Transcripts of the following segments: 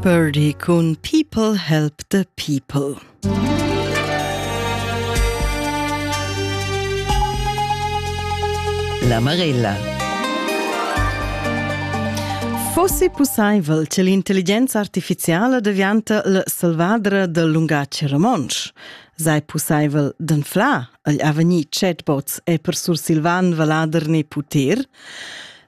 Birdie cun People Help the People. La Marella. Fossi pussaivel che l'intelligenza artificiala devianta la salvadra del lungatg romontsch. Sei pussaivel d'anflar agl avegnir chatbots e per sursilvan valader ne puter?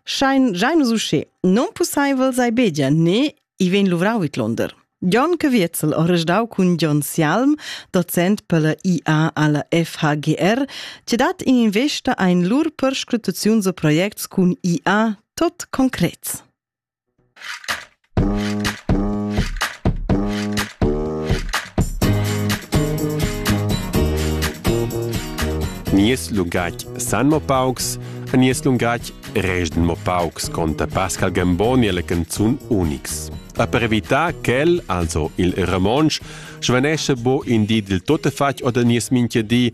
Schein gein nus usché. Non pusseivel sei begia ne i ven luvrau vid Londer. Jon Caviezel ha resdau cun Jon Sialm, docent per la IA alla FHGR, che dat in investa ein lur perscrutaziuns a projects cun IA tot concrets. Nies lungatg san mo paucs e nies lungatg resden mo paucs, conta Pascal Gamboni alle canzun unics. A per evitar quel, also il romontsch, svanesce bo in di del tuttafatg oder nies minchia di,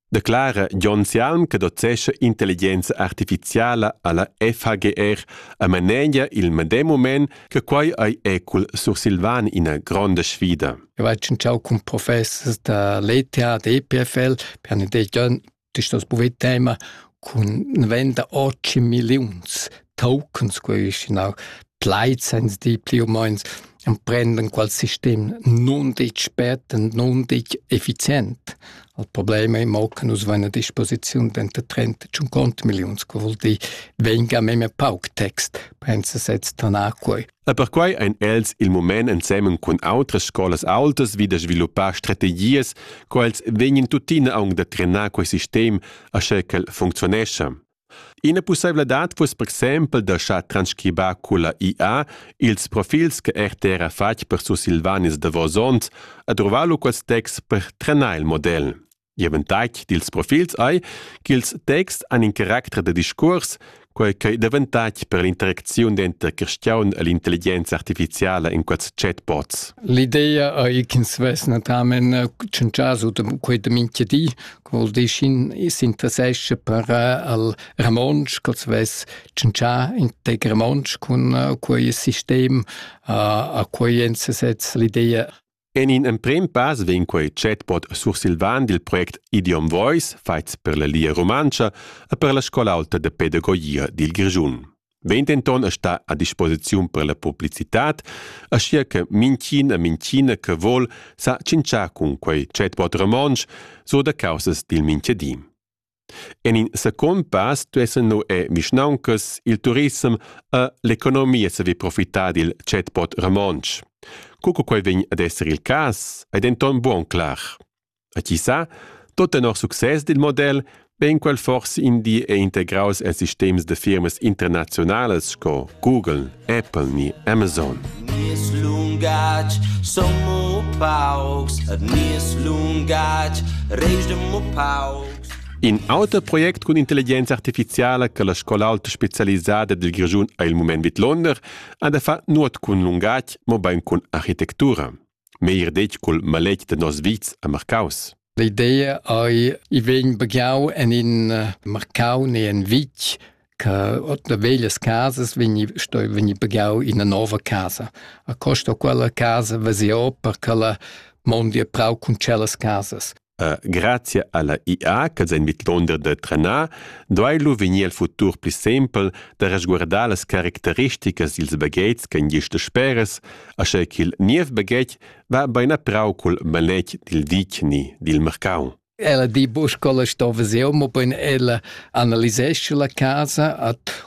declara Jon Sialm che docescha intelligenza artificiala alla FHGR a manegia il medem moment che quai ei ecul sursilvan ina gronda sfida. Eu hai tschintschau cun professors da l'ETA, da EPFL, per ne dei Jon, das ist das Buvettema, cun venda 8 millions tokens quaistinau plaid sens di pli u meins emprenden qual sistem non ditg spert und non ditg effizient. Al problem ei mo che nus vein a disposiziun denter 30 e 50 milliuns, co vul dir venga memia pauc text, pensa sez tanar quei. E per quei ein els il moment ensemen cun outras scolas autas vi da sviluppar strategias, quals vegnan tuttina aunc da trenar quei sistem, asche ch'el functionescha. Ina pusseivladad fuss per exempel da schar transcribar culla IA ils profils che RTR ha fatg per sursilvanis davos onns ed ruvar lu quels texts per trenar il model. Gl'avantatg dils profils ei ch'ils texts han in caracter da discuors, quei ch'ei davantatg per l'interacziun denter cristiaun e l'intelligenza artificiala in quels chatbots. L'idea ei ch'ins vess natamen tschintgia sut quei da mintga di col dischin s'interessescha per al romontsch, col svess tschintschà integ romontsch cun quei sistem a quei ensesez l'ideia. En in emprem pass vegn quei chatbot sursilvan dil project Idiom Voice, faits per la Lia Rumantscha e per la Scola Alta de Pedagogia dil Grischun. Vegn denton a star a disposiziun per la publicitad, aschia che minchin e minchina che vol sa tschintschar cun quei chatbot romontsch so da causas dil minchadi. En in second pass duessen nu e vischnauncas, il turism e l'economia saver profitar dil chatbot romontsch. Co che quei vegn ad esser il cas, ei denton buon clar. E chi sa, tot tenor success dil model vegn quel forse in di è integraus en sistems de firmas internazionales sco Google, Apple ni Amazon. Nies lungatg son mo paucs, et nies lungatg reis mo paucs. In auter project cun intelligenza artificiala che la scola alta specialisada dil Grischun ha il mument vid Londer ha da far nuot cun lungatg, mobein cun architektura. meir detg cul maletg da nos vits a Marcaus. L'idea ei i vegn bagiau en in eh, Marcau ne en Vitg che otna veglias casas vegni sto vegni bagiau in una nova casa. A costa quella casa vesio per che la mondi a prau cun celas casas. Grazia alla IA ch'els ein vidlunder da trenar, duei lu vegnir el futur pli sempel da resguardar las caracteristicas dils baghetgs ch'ein gist dasperas, aschia ch'il niev baghetg va bein a prau cul maletg dil vicni dil marcau. Ella di buca scola sto veser, mobein ella analisescha la casa ad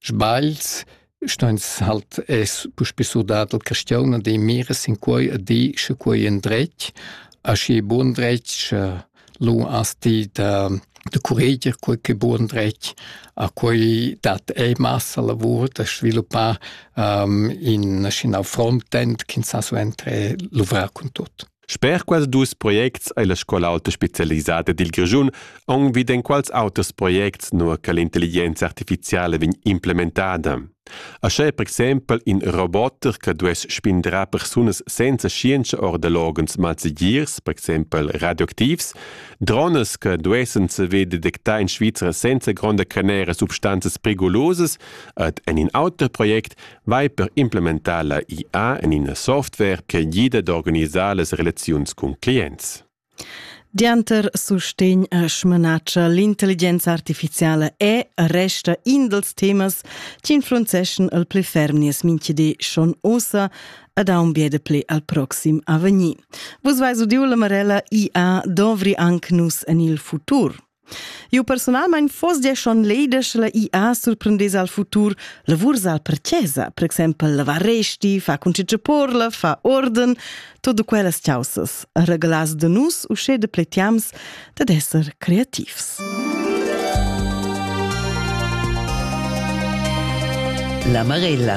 Sbagls stans halt es puspè surdà dal chastiaun ad ir mira sin quai e dir sche quai es dretg. Aschi bun dretg sche lur as di da da curreger quai ch'e bun dretg. A quai dat ei massa lavur da sviluppar ähm, in schinau frontend ch'ins sa suenter luvrar cun tut. Sper quels dus projects ei la scola aulta specialisada dil Grischun aunc vid enquals auters projects, nua che l'intelligenza artificiala vegn implementada. Aschè per exempel in roboter che duess spindrar persunas senza scienza or da loghens malsegirs, per exempel radioactivs, drones che duessen saver detectar in Svizra senza gronda canera substanzas perigolosas ed en in auter project vai per implementar la IA en ina software che gida d'organisar las relaziuns cun clients. Dianter sustegn e smanatscha l'intelligenza artificiala è resta in dels temas che influenzeschan il pli ferm nies minchidi schon ossa ed ha un biede pli al proxim avegnir. Vus vais udiu la Marella IA dovri anc nus en il futur. Eu personalmaing foss gia schon leda sche la IA surprendess al futur lavurs al per chesa, per exempel lavar resti, fa concitge porla, fa orden, todo quellas chaussas, regalas de nus usche de pletiams dad esser creativs. La Marella